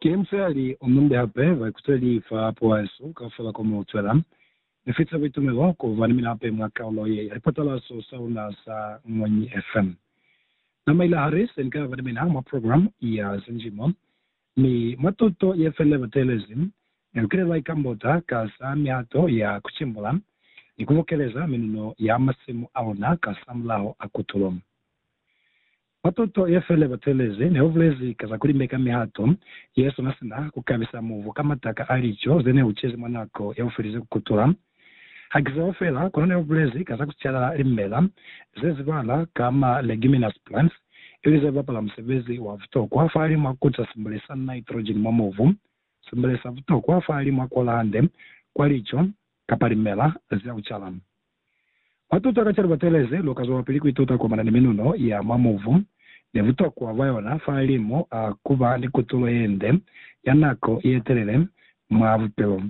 Ki musali o munde hape wa ikutweli fa poeso kaufela ko mu zwela. Ni fita buitumelo ku ba ni mina hape mwa kaulo ye ya lipatalazo sa luna za Ngwenyi FM. Na maila hali se ni ka ba ni mina mwa program ya Zinjimo, Mi mwa tuto ye fela ba teelezi, ne lu kile lwa ikambota ka za mihato ya ku cimbula ni ku bokeleza minuno ya masimu a luna kasamulaho a kutulo. Mwa tuto ye fela ba teelezi ne lu bulezi ka za ku limeka mihato ye sona sina ku kabisa mubu ka mataka a lico ze ne lu cezi mwa nako ya bufelize ku kutula Ha ki zeo fela, kono ne u bulezi ka za ku cala limela ze zibala ka ma leguminous plants, ili ze bapala musebezi wa butokwa fahalimwa ku casimbule sa nitrogen mwa mubu, simbule sa butokwa fahalimwa ku ola hande kwa lico kapa limela za ku cala. Mwa tuto ka ca libatelezi, lu ka zwelapili ku ituta kuamana ni minuno ya mwa mubu ni butokwa bwa yona fahalimu a ku ba ni kutulo ye nde ya nako ye telele mwa bupilo.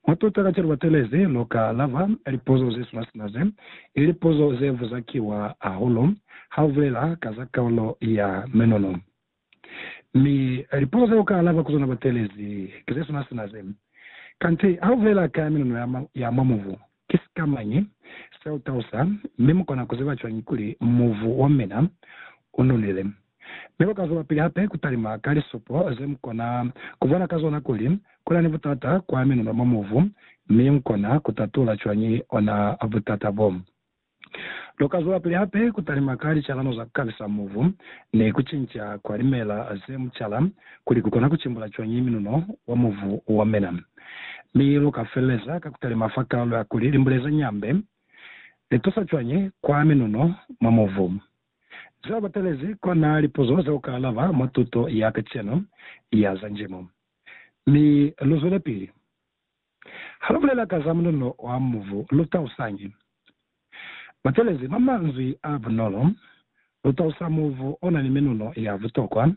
Matuta kacenu batelezi luka lava lipuzo zesula sina ze li lipuzo zevuza kiwa hahulu ha ubulela ka za kaulo ya menono. Mi lipuzo ze uka alaba ku zona batelezi ki zesula sina ze. Kanti ha ubulela ka ya menono ya mwa mubu, Ki sikamañi seutausa, mi mukona kuziba cwañi kuli mubu wamina ununile? Mi luka zwelapili hape kutalima ka lisupo zemukona kubona ka zona kuli kunani butata kwa minuno mwa mubu, mi mukona kutatula cwañi ona butata bo. Lu ka zwelapili hape ku talima ka licalano za ku kabisa mubu ni ku cinca kwa limela ze mucala kuli ku kona ku cimbula cwañi minuno wa mubu wa mina. Mi lu ka feleleza ka ku talima fa kalo ya kuli limbule za nyambe li tusa cwañi kwa minuno mwa mubu. Ze lu batelezi kona lipuzo ze lu ka alaba mwa tuto ya kacenu ya za njimo. Mi lu zwelepili. Ha lu bulela ka za munono wa mubu, lu tausañi? Butelezi bwa manzwi a bunolo lu tausa mubu o na ni minono ya butokwa,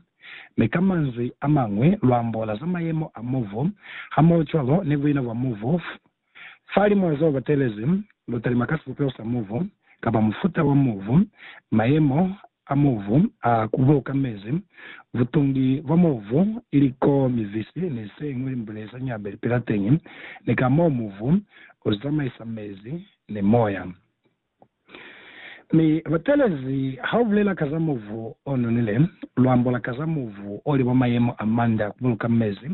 mi ka manzwi a mañwi lu ambola za mayemo a mubu hamohocwalo ni buina bwa mubu. Fa limwa zeo butelezi lu talima ka sibupeho sa mubu, kapa mufuta wa mubu, mayemo a mubu a kubuka mezi, butungi bwa mubu, iliko, mibisi, ni se ñwi limbule za ñabe lipila teñi, ni ka mo mubu u zamaisa mezi ni moya. Mi batelezi ha u bulela ka za mubu o nonile, lu ambola ka za mubu o li mwa mayemo a manda a kubuluka mezi,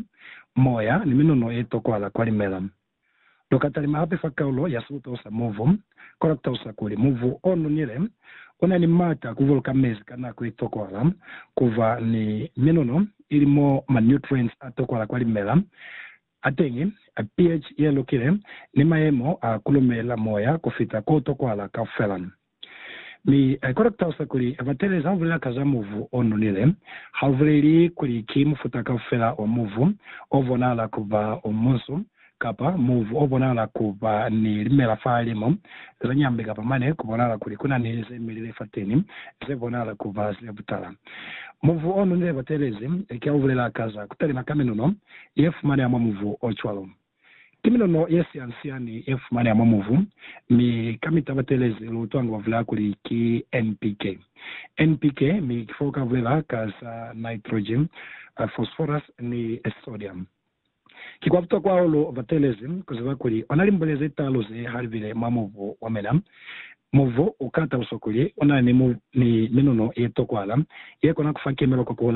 moya, ni minuno ye tokwahala kwa limela. Lu ka talima hape fa kaulo ya sibupeho sa mubu, kono ku talusa kuli mubu o nonile u na ni m'ata a ku buluka mezi ka nako i tokwahala, ku ba ni minono, ili mo ma nutrients a tokwahala kwa limela a teñi, pH ye lukile, ni mayemo a ku lumelela moya ku fita ko tokwahala kaufela. Mi I kona kutalusa kuli Abatelezi ha ubulela ka za muvu o nonile, ha u buleli kuli ki mufuta kaufela wa muvu o bonahala ku ba o munsu, kapa muvu o bonahala ku ba ni limela fahalim'o ze nyambi kapa mane ku bonahala kuli ku na ni ze milile fateni ze bonahala ku ba ze butala. Muvu o nonile Abatelezi ki ha u bulela ka za ku talima ka minuno ye fumaneha mwa muvu o cwalo. Ki minono ye siani-siani ye fumaneha mwa mubu, mi ka mitabatelezi lu utwa nga ba bulela kuli ki NPK. NPK, mi ki fo ka bulela ka za nitrogen, phosphorus ni sodium. Ki kwa butokwa hahulu batelezi ku ziba kuli ona limbule ze taalu ze ha libile mwa mubu wa mina. Mubu u ka taluswa kuli una ni minono ye tokwahala ye kona ku fa kimelo kwa ku hola.